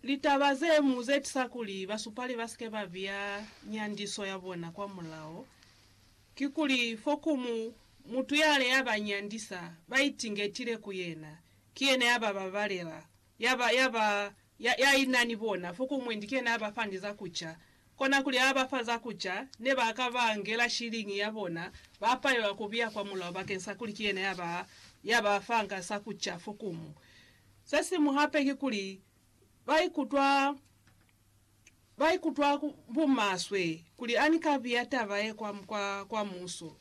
Litaba ze mu ze tisa kuli basupali ba si ke ba biya nyandiso ya bona kwa mulao ki kuli fo ku mu mutu ya le ya ba nyandisa ba itingetile ku yena, ki yena ya ba babalela, ya ba, ya ba, ya, ya ina ni bona, fo ku mwendi ki yena ya ba fa ni za ku ca. Kona kuli ha ba fa za ku ca, ne ba ka ba ngela shiliñi ya bona, ba palelwa ku biya kwa mulao bakeni sa kuli ki yena ya ba, ya ba fanga sa ku ca fo ku mu. Se siñwi hape kikuli, ba ikutwa ba ikutwa bumaswe kuli ani ka biya taba ye kwa, kwa, kwa Muso.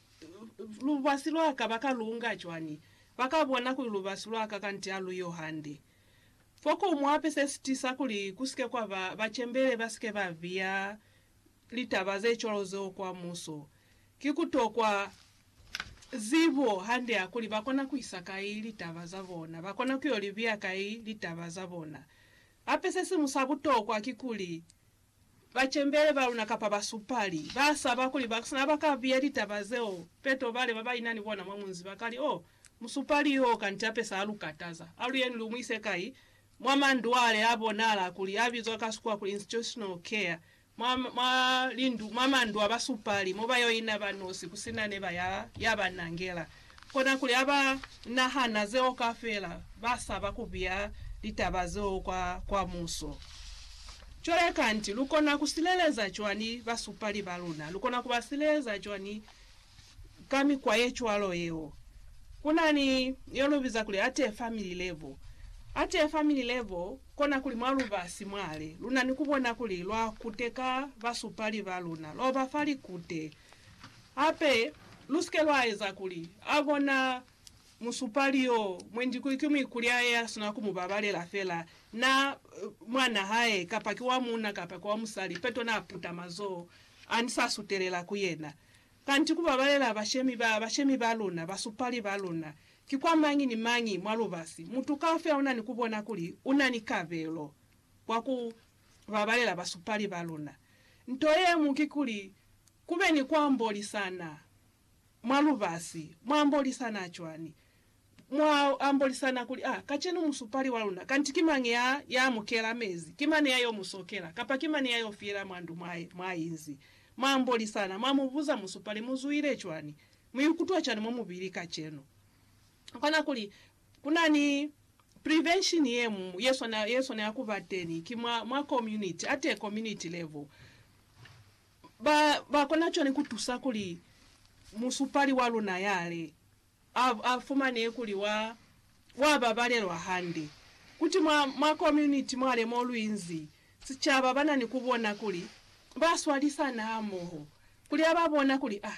Lubasi lwa ka ba ka lu nga cwañi? Ba ka bona kuli lubasi lwa ka kanti ha lu yo hande. Fokumu hape se si tisa kuli ku si ke kwa ba bacembele ba si ke ba biya litaba ze cwalo zeo kwa muso. Ki ku tokwa zibo hande ya kuli ba kona ku isa kai litaba za bona, ba kona ku yo li biya kai litaba za bona. Hape se siñwi sa butokwa ki kuli bacembele ba luna kapa basupali ba saba kuli ba sina ba ka biya litaba zeo peto bale ba ba ina ni bona mwa munzi ba ka li, Oh, musupali yo kanti hape sa lu kataza. Aluyeni lu mu ise kai? Mwa mandwale a bonala kuli a bizwa ka Sikhuwa kuli institutional care. mwa lindu, mwa mandu a basupali, mo ba yo ina ba nosi ku si na neba ya, ya ba nangela. Kona kuli ha ba nahana zeo kafela, ba saba ku biya litaba zeo kwa, kwa muso. Cwale kanti lu kona ku sileleza cwani basupali ba luna? Lu kona ku ba sileleza cwani ka mikwa ye cwalo yeo. Ku na ni yo lu biza kuli ate family level. Ate family level kona kuli mwa lubasi mwale, lu na ni ku bona kuli lwa kute ka basupali ba luna, lwa ba fa likute. Hape, lu si ke lwa eza kuli a bona Musupali yo mwendi ki muikulyae ya sina ku mu babalela fela, na, mwan'a hae, kapa ki wa muuna kapa ki wa musali, peto na puta mazoho a ni sa sutelela ku yena. Kanti ku babalela bashemi ba, bashemi ba luna, basupali ba luna, ki kwa mañi ni mañi mwa lubasi, mutu kaufela una ni ku bona kuli una ni kabelo kwa ku babalela basupali ba luna. Nto ye mu ki kuli, ku be ni ku ambolisana. mwa lubasi, mwa ambolisana cwani? Mwa ambolisana kuli, Ah, kacenu musupali wa luna, kanti ki mañi ya, ya mu kela mezi? Ki mani ya yo mu sokela? Kapa ki mani ya yo fiyela mwa ndu mwa, mwa inzi? Mwa ambolisana, mwa mu buza, Musupali, mu zwile cwani? Mu ikutwa cwani mwa mubili kacenu? Kona kuli, kuna ni prevention ye mu, ye swanela, ye swanela kuba teni, ki mwa, mwa community, atee community level. Ba, ba kona cwani ku tusa kuli musupali wa luna ya li, a, a fumane kuli wa, wa babalelwa hande? Kuti mwa, mwa komuniti mwale mo lu inzi, sicaba ba na ni ku bona kuli ba swalisana hamoho, kuli ha ba bona kuli, ah,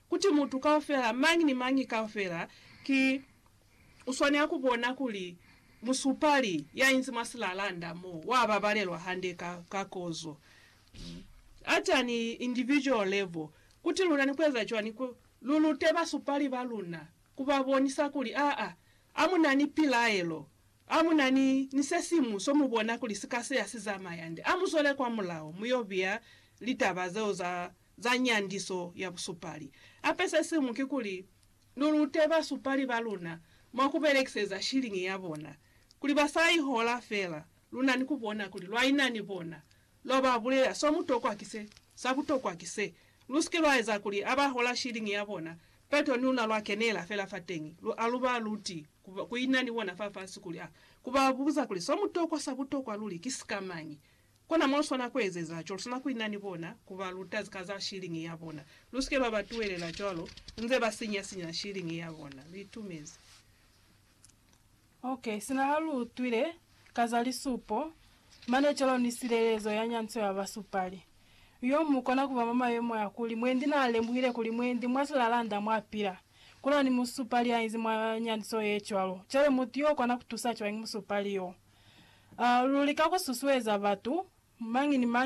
Kuti mutu kaufela, mañi ni mañi kaufela, ki uswanela ku bona kuli musupali ya inzi mwa silalanda mo, wa babalelwa hande ka, ka kozo. At an individual level, kuti luna ni kueza cwani ku lu lute basupali ba luna, ku ba bonisa kuli, aa, a mu na ni pilaelo, a mu na ni, ni sesiñwi so mu bona kuli si ka seya si zamaya nde, a mu zwele kwa mulao, mu yo biya litaba zeo za za nyandiso ya busupali. Ape se siñwi kikuli, lu lute basupali ba luna mwa ku belekiseza shiliñi ya bona kuli ba sa i hola fela lu na ni ku bona kuli lwa ina ni bona, lwa ba bulelela so mutokwa ki se, sa butokwa ki se. Lu si ke lwa eza kuli ha ba hola shiliñi ya bona, peto ni luna lwa kenela fela fateñi, lu, ha lu ba luti ku, ku ina ni bona fafasi kuli, ha, ku ba buza kuli so mutokwa, sa butokwa luli ki sikamañi. Kona mo lu swana ku ezeza cwalo. Lu swana ku ina ni bona, ku ba luta ka za shilingi ya bona. Lu si ke lwa ba tuhelela cwalo, nze ba sinya-sinya shilingi ya bona. Lu itumezi. Ok, sina ha lu utwile ka za lisupo, mane cwalo ni silelezo ya nyanco ya basupali, yo mu kona ku ba mwa mayemo a kuli mwendi na lemuhile kuli mwendi mwa silalanda mwa pila. Kuna ni musupali ya inzi mwa nyaniso ye cwalo. Cwale mutu yo kona ku tusa cwañi musupali yo? A luli ka ku susueza batu, mañi ni mañi